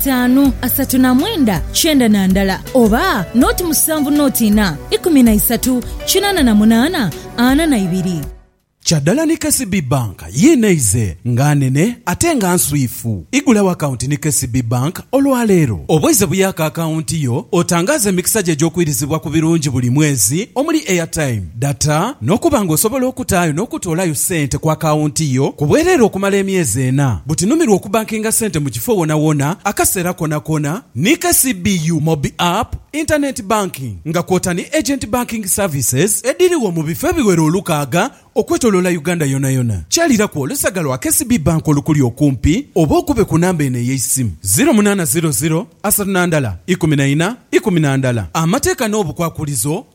itaanu, asatu na mwenda, kyenda na ndala, oba noti musanvu noti inha, ikumi na isatu, kinaana na munaana, ana na ibiri. Kya dala ni KCB Bank yiino eize nga nene ate nga nswifu. Igulawo akawunti ni KCB Bank olwaleero. Obweize buyaako akawunti yo, otangaaze emikisa gyo egy'okwirizibwa ku birungi buli mwezi omuli airtime, Data n'okuba nga osobola okutaayo n'okutoolayo sente ku akawunti yo ku bwereere okumala emyezi ena. Buti numirwa okubankinga sente mu kifo wonawona, akaseera konakona ni KCBU Mobi App, Internet Banking nga kwota ni Agent Banking Services edhirigho mu bifo ebiwera olukaaga okwetoloola Uganda yonayona. Kyaliraku olusaga lwa KCB Bank olukuli okumpi oba okube ku namba eno ey'eisimu, ziro munana ziro ziro asatu na ndala ikumi na ina ikumi na ndala. Amateeka n'obukwakulizo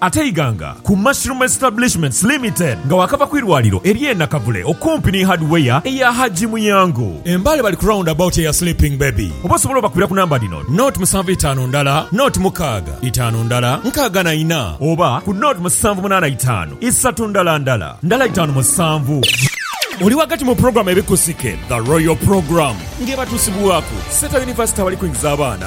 Ate Iganga ku Mushroom Establishments Limited nga waakava ku irwaliro ery'e Nakavule okumpi ni Hardware eya Hajji Muyango e Mbale bali ku round about eya Sleeping Baby oba osobola obakubira ku namba dhino, naught musanvu itaanu ndala naught mukaaga itaanu ndala nkaaga na ina oba ku naught musanvu munaana itaanu isatu ndala ndala ndala itaanu musanvu. Oli ghagati mu pulogulaamu ebikusike, The Royal Programme, ng'ebatuusibwaku Seeta University abali kwingiza abaana